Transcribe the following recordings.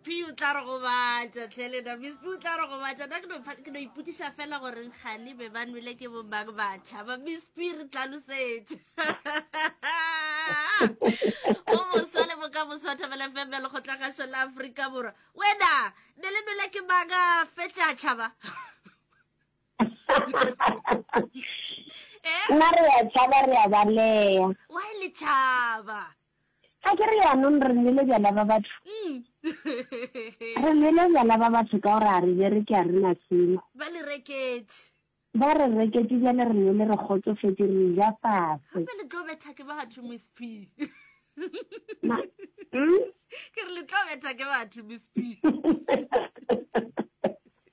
P o tla re gobatša tlhe lena miss P o tla re gobatša na ke no ipotšiša fela goreng gale be ba nwele ke bomang batšha ba miss P re tlalosetše o moswa le boka moswa thabela fm ya lekgotlagašo la aforika borwa wena ne le nwele ke manga fetša tšhaba eh? nna re ya tšhaba re ya baleya wa le tšhaba Ga ke re yaanong re nwele bjala ba batho? Re nwele bjala ba batho ka gore a re bereke a re na selo. Ba le reketše. Ba re reketše bjale re nwele re kgotsofetše re ja fase. Gape le tlo betha ke batho Miss P. Ma, mm? Ke re le tlo betha ke batho Miss P.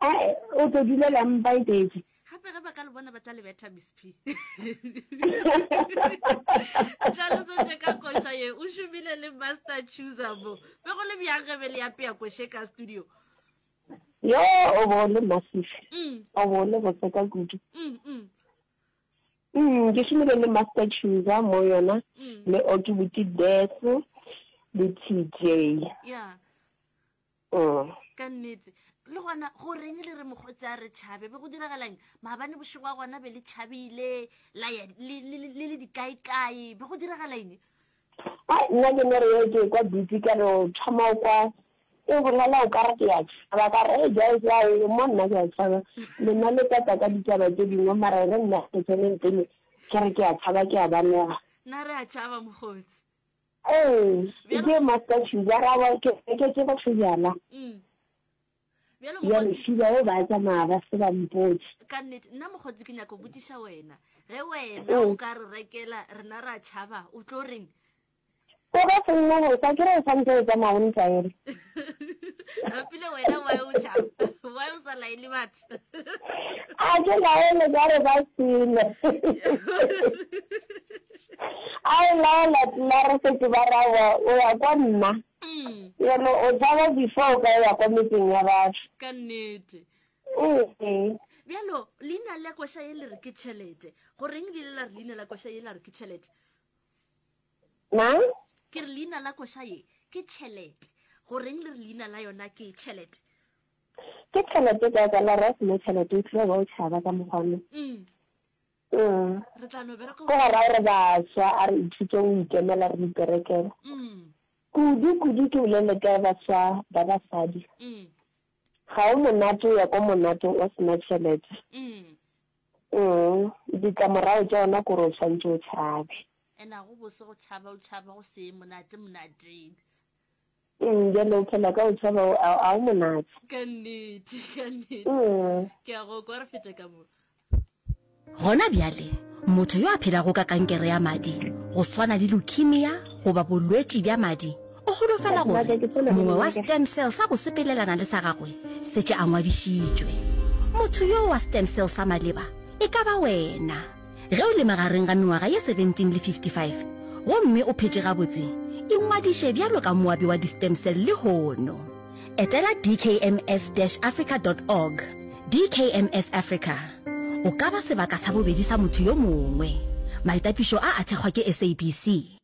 A e, o tlo dulela mpa e tletše. Gape ge ba ka le bona ba tla le betha Miss P. Tlhalosetše ka koša ye o šomile le Master Chooser mo. Be go le bjang ge be le apea koše ka studio? Yo o bo le massive. Mm. O bo le botse ka kudu. Mm. Mm. Mm, ke šomile le Master Chooser mo yona mm. le Okibuti Death le TJ. Yeah. Ka nnete. Le gona go reng le re mokgotsi a re tšhabe? Be go diragalang? Maabane bošego wa gona be le tšhabile, la ya le le dikaekae? Be go diragalang? Nna ke no re ye ke kwa dutse ka re o thoma o kwa e bolela o ka re ke ya tšhaba ka re e ja e ja e mo nna ke ya tšhaba lena le tata ka ditaba tse dingwe mara re nna ke tseneng pele ke re ke ya tšhaba ke ya banega na re a tšhaba mokgotsi Ee, e ke Master Shuba ra ba ke ke ke go sejana. Mm. Bjalo mo. Ya le Shuba o ba tsa ma ba se ba mpotse. Ka nnete nna mogotsi ke nyako botiša wena. Ge wena o ka re rekela rena ra tšhaba o tlo reng? Ko ga se nna go sa ke re sa ntse tsa magontsa ere. Rapile wena wa o tšhaba. Wa o sa laele batho. a ke laele ka re ba sele a o laela tla re setse ba rawa o ya kwa nna mm. yone o tshaba before o ka ya kwa metseng ya batho ka nnete ee bjalo leina la koša ye le re ke tšhelete goreng le ile la re leina la koša ye la re ke tšhelete na ke re leina la koša ye ke tšhelete goreng le re leina la yona ke tšhelete Ke tšhelete ka ka la ra seno tšhelete e tlile ba o tšhaba ka mokgwa no. Mm. Mm. Re tla no bereka. Go ra re baswa a re ithute o ikemela re iperekela. Mm. Kudu kudu ke bolele ka baswa ba basadi. Mm. Ga o monate o ya ko monate o sena tšhelete. Mm. Mm. Ditlamorago tša ona kore o tshwanetse o tšhabe. Ena go bose go tšhaba o tšhaba go se monate monateng. Umm bjale o phela ka go tšhaba o a a o monate. Ka nnete, ka nnete. Umm. Ke a go kwa re fete ka mo. Gona bjale, motho yo a phelago ka kankere ya madi, go swana le leukemia goba bolwetši bja madi, o holofela gore mongwe wa stem cell sa go sepelelana le sa gagwe se tše a ngwadišitšwe. Motho yoo wa stem cell sa maleba e ka ba wena. Ge o le magareng ga mengwaga ye 17 le 55 gomme o phetše gabotse, ingwadiše bjalo ka moabi wa di-stem cell lehono. Etela dkms-africa dot org, DKMS Africa. O ka ba sebaka sa bobedi sa motho yo mongwe. Maitapišo a a thekgwa ke SABC.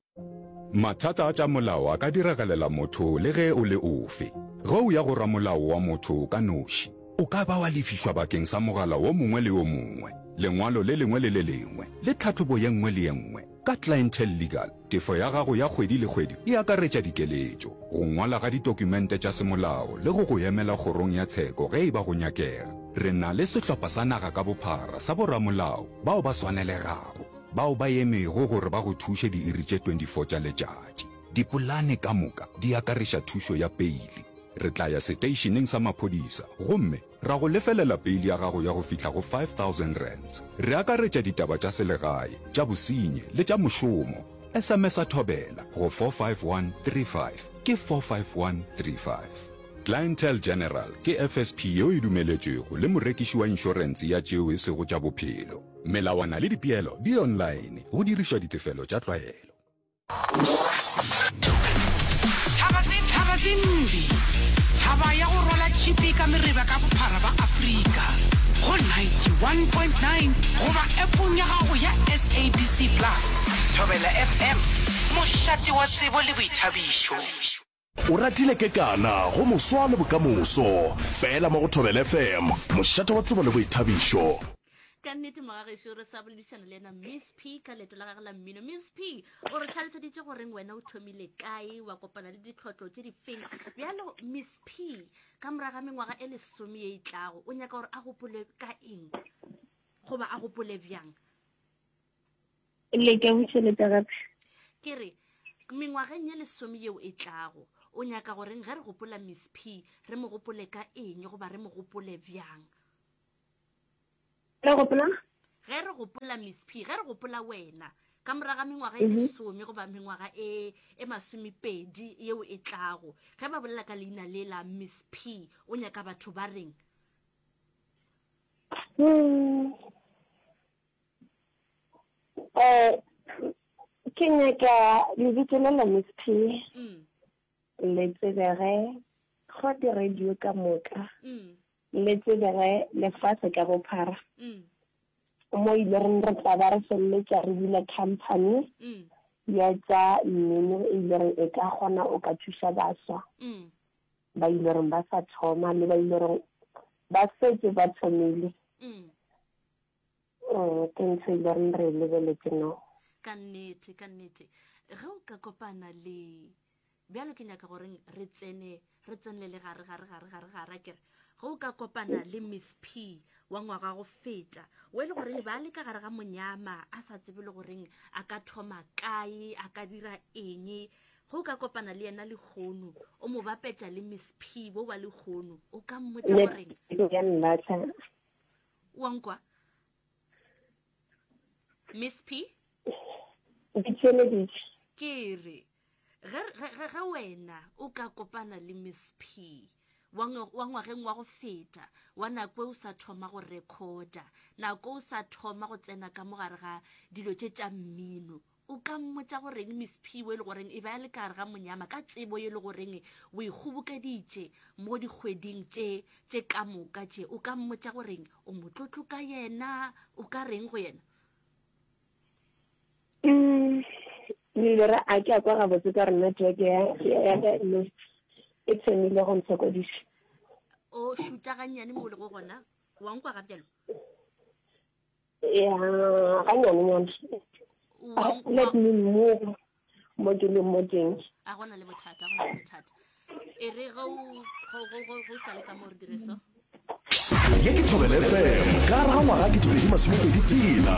Mathata a tša molao a ka diragalela motho le ge o le ofe. Ge o ya go ramolao wa motho ka noši, o ka ba wa lefišwa bakeng sa mogala wo mongwe le yo mongwe, lengwalo le lengwe le le lengwe, le tlhahlobo ye nngwe le ye nngwe. Ka Clientele Legal, tefo ya gago ya kgwedi le kgwedi e akaretša dikeletšo, go ngwala ga ditokumente tša semolao le go go emela kgorong ya tsheko ge e ba go nyakega. Re na le sehlopha sa naga ka bophara sa boramolao bao ba swanelegago. bao ba emego gore ba go thuše diiri tše 24 tša letšatši. Dipolane ka moka di akareša thušo ya peili. Re tla ya seteišeneng sa maphodisa gomme ra go lefelela peili ya gago ya go fihla go R5,000. Re akaretša ditaba tša selegae, tša bosenyi le tša mošomo. SMS-a Thobela go 45135, ke 45135. Clientele General ke FSP yeo e dumeletšwego le morekiši wa inšorense ya tšeo e sego tša bophelo. Melawana le dipeelo di online, go dirišwa ditefelo tša tlwaelo. Thaba tse thaba tse mbi Thaba ya go rwala tšhipi ka mereba ka bophara ba Afrika go 91.9 goba appong ya gago ya SABC Plus. Thobela FM, mošate wa tsebo le boithabišo. O ratile kekana go moswa le bokamoso. Fela mo go Thobela FM, mošate wa tsebo le boithabišo. ka nnete mogagešo re sa boledišana le ena miss p ka leeto la gage la mmino miss p o re tlhaloseditše goreng wena o thomile kae wa kopana le ditlhotlo tše difeng bjalo miss p ka morago ga mengwaga e lesome ye e tlago o nyaka gore a gopole ka eng goba a gopole bjang le ke bušeletša gape ke re mengwageng ye lesome yeo e tlago o nyaka goreng ge re gopola miss p re mo gopole ka eng goba re mo gopole bjang re gopola ge re gopola miss p ge re gopola wena ka moraga mengwaga e mhm. lesome goba mengwaga e e masomepedi yeo e tlago ge ba bolela ka leina le la miss p o nyaka batho ba reng hmm. Eh, ke nyaka lebitso la la Miss P mm. le tsebege go di-radio ka moka mm. le tsebege lefatshe ka bophara mm. mo e ile reng re tla ba re feleletsa re bula company ya tsa mmino e ile reng e ka gona o ka thusa baswa ba ile reng ba sa thoma le ba ile reng ba setse ba thomile Oh, ke ntho e loreng re e lebeletse no ka nnete ka nnete ge o ka kopana le bjalo ke nyaka goreng re tsene re tsenelele gare gare gare gare gare a kere ge o ka kopana le miss p wa ngwaga go feta o e le goreng ba le ka gare ga monyama a sa tsebe le goreng a ka thoma kae a ka dira eng ge o ka kopana le yena lehono o mo bapetša le miss p bo ba lehono o ka mmotsa goreng ya nna tla wa nkwa miss p ditšweleditše ke re ge wena o ka kopana le miss p wa ngwageng wa go feta wa nako o sa thoma go recorda nako o sa thoma go tsena ka mogare ga dilo tše tša mmino O ka mmotša goreng Miss Phiwe le goreng e be a le kare ga monyama ka tsebo ye le goreng o e kgobokeditše mo dikgweding tše tše ka moka tše. O ka mmotša goreng o motlotlo ka yena, o ka reng go yena? Mm, le re a ke a kwa gabotse ka rena jeke ya ya ka le e tshemile go ntshokodisa o šuta gannyane mo le go gona wa nkwa ga bjalo ya ga nyane nyane let me move mo ke le mo teng a gona le bothata gona le bothata e re go go sa le ka mo re dire so ye ke thobele fm ka ra ngwaga ke tobedi masomepedi tsela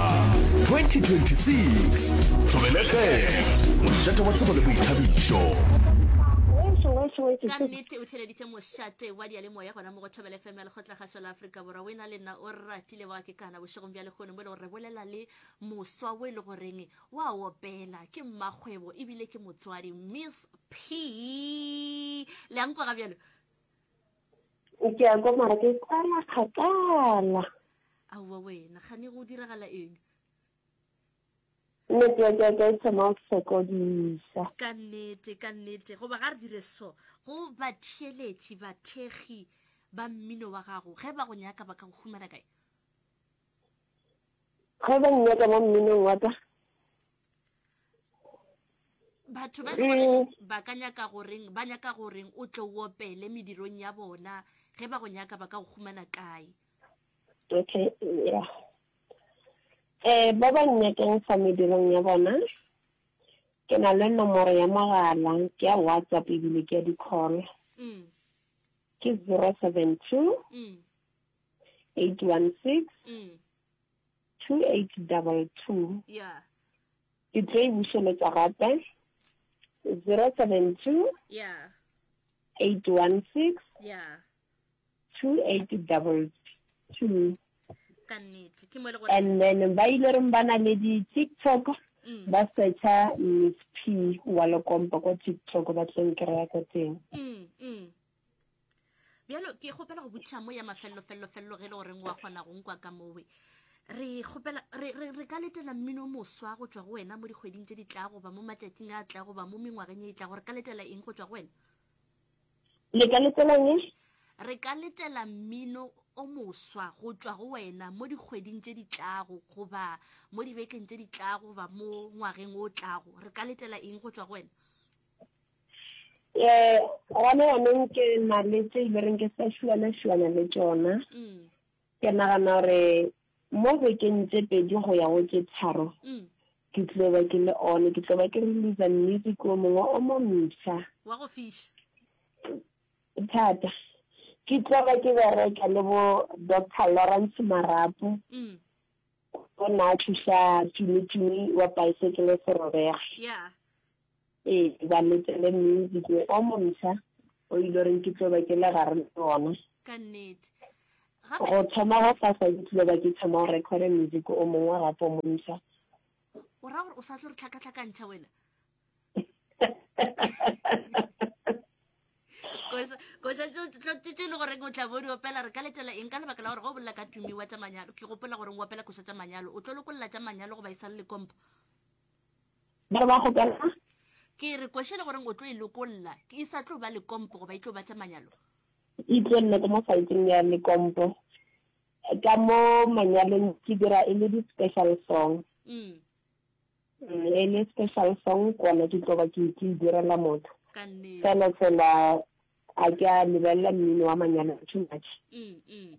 2026 thobele fm mošate wa tsebo le boithabišo ka nnete o tlheleditše mošate wa diyalemoya gona mo go thobele fm ya lekgotla gašo la aforika borwa o e na le nna o rra kile wa kekana bošegong bja lekgono mo e le gore re bolela le moswa o e le goreng wa opela ke mmakgwebo ebile ke motswadi miss p le yang kwa ga bjalo ke ya kwa mara ke kwala kgakala aowa wena gane go diragala eng Nnete ya ka ka e thoma go sokodiša. Ka nnete, ka nnete, goba ga re dire so. Go batheeletši, bathekgi ba mmino wa gago, ge ba go nyaka ba ka go humana kae? Ge ba nnyaka mo mminong wa ka. Batho ba le gore mm. ba ka nyaka goreng, ba nyaka goreng o tle o opele medirong ya bona, ge ba go nyaka ba ka go humana kae? Okay, ya. Eh, ba ba nnyakang fa medirong ya bona, ke na le nomoro ya mogala, ke ya WhatsApp ebile ke ya di-call. Mm. Ke 072 mm. 816 mm. 2822. Yeah. Ke tlo e bušeletsa gape. 072 yeah. 816 yeah. 2822 and then ba ile reng ba na le di-tiktok mm. ba searcha miss p wa lekompo kwa tiktok ba tleng kry-a ka teng mm, mm. bjalo ke kgopela go botšha mo ya mafellofellofello ge e le goreng wa kgona go nkwa ka mowe re gopela re re re ka letela mmino moswa go tswa go wena mo dikgweding tse di tla goba mo matšatsing a tla goba mo mengwageng e tla gore ka letela eng go tswa go wena Le ka letelang e? Re ka letela mmino o moswa go tšwa go wena mo dikgweding tše di tlago goba mo dibekeng tše di tlago goba mo ngwageng o tlago. Re ka letela eng go tšwa go wena? Eh, gona yanong ke na le tše ile reng ke sa šuana-šuana le tšona. Mm. Ke nagana gore mo bekeng tše pedi go ya go tše tharo ke tlo ba ke le one ke tlo ba ke releasa music o mongwe o mo msa wa go fiša thata ke tlo ba ke bereka le bo doctor lawrence marapo mm. o ne a thuša tumitumi wa bicycle serobega yeah. Ee, ba letele music o mosha o ile reng ke tlo ba ke le gare le bona. Ka nnete. Gape Go thoma go fa sa ke tlo ba ke thoma go record music o mongwe gape o mosha. o ra gore o sa tlo re tlhakatlhakantšha wena. Koša, koša tšo tlo tšo tšo le goreng o tla bo di opela re ka letela eng ka lebaka la gore go bolela ka tumiwa tša manyalo ke gopola goreng o opela koša tša manyalo o tlo lokolla tša manyalo goba e sa le le kompo. ba re ba kgopela ke re kwešele goreng o tlo e lokolla e sa tlo ba lekompo goba e tlo batla manyalo e tlo nna ka mo saeteng ya lekompo ka mo manyalong ke dira e le di-special song mm. Mm, e le special song kona ke tlo ba ke ke e direla motho fela fela a ke a lebelela mmino wa manyalo too much mm,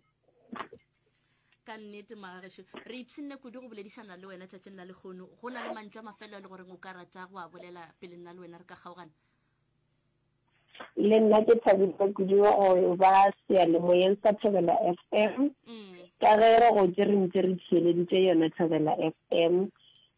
ka nnete magagešo re ipshinne kudu go boledišana le wena tšatšing la lekgono go na le mantšu a mafelo a le goreng o ka rata go a bolela pele nna le wena re ka kgaogana le nna ke thabile kudu go ba sealemoyeng sa thobela f m mm. ka ge re gotse re ntse re theeleditše yona thobela f m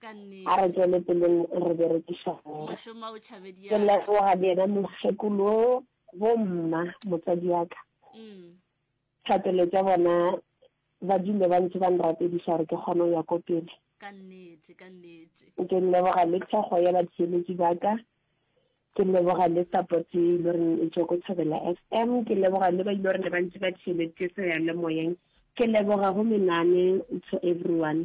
Ka A re nnete. tšwele peleng re berekiša mma. Mošoma o tšhabedi Ke ya ka. leboga bjena mokgekolo wo, bomma, motswadi wa ka. Umm. Thapelo tša bona ba dule ba ntše ba nrapediša gore ke kgone go ya ko pele. Ka nnete, ka nnete. Ke leboga le thekgo ya batheeletši ba ka. Ke leboga le support e ile gore e tšwa ko Thobela FM. Ke leboga le ba ile gore ne ba ntše ba theeleditše seyalemoyeng. Ke leboga go menane to everyone.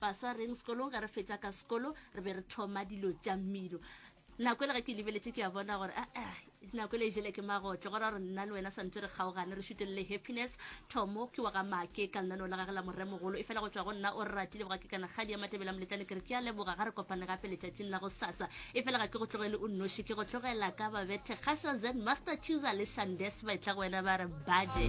baswa reng sekolong ge re fetša ka sekolo re be re tlhoma dilo tša mmino nako e le ge ke lebeletše ke ya bona gore ah, ah, nako e le e jele ke magotle gora gore nna le wena swantse re kgaogane re šutelele happiness thomo ke wa ga make ka lenaneo la gage la moremogolo e fela go tswa go nna o re ratile boga ke kana kgadi ya matebela moletlane ke re ke a leboga ga re kopane gape letšatšing la go sasa e fela ga ke go tlogele o nnoši ke go tlogela ka babethe kgašo zen master chooser le shandes ba etla go wena ba re baje